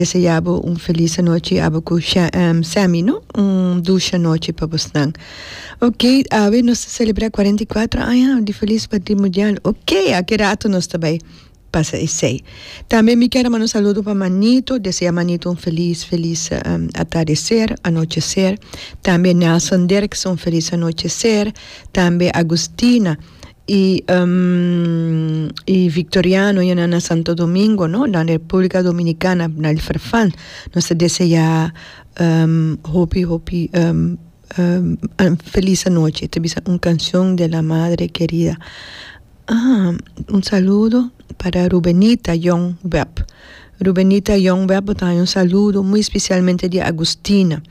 Deseabo un felis anochi abo cu Sammy no un dushi anochi pa bosnan ok awe nos ta celebra cuarenta y cuatro aña di felis matrimudial ok aki rato nos ta bay pasa esey tambe mi kier a manda un saludo pa manito desea manito un felis felis atardecer anochecer tambe Nelson Dirkson un felis anochecer tambe Agustina. y victoriano y nan na santo domingo no nan republica dominicana na el farfan nos ta deseá hopi hopi feliz anochi e ta bisa un cancion de la madre querida un saludo para rubenita young web Rubenita Jong bè a botaña un saludo muy especialmente di Agustina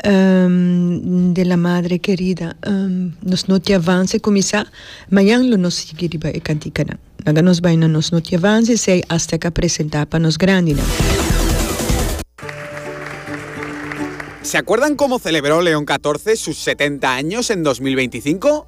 de la madre querida nos no ti avance cuminsa mañan lo nos sigui riba e canticanan laga nos bay na nos no ti avance esey hasta ca presenta pa nos grandinan. Se acuerdan como celebró León catorce sus setenta años en dos mil veinticinco?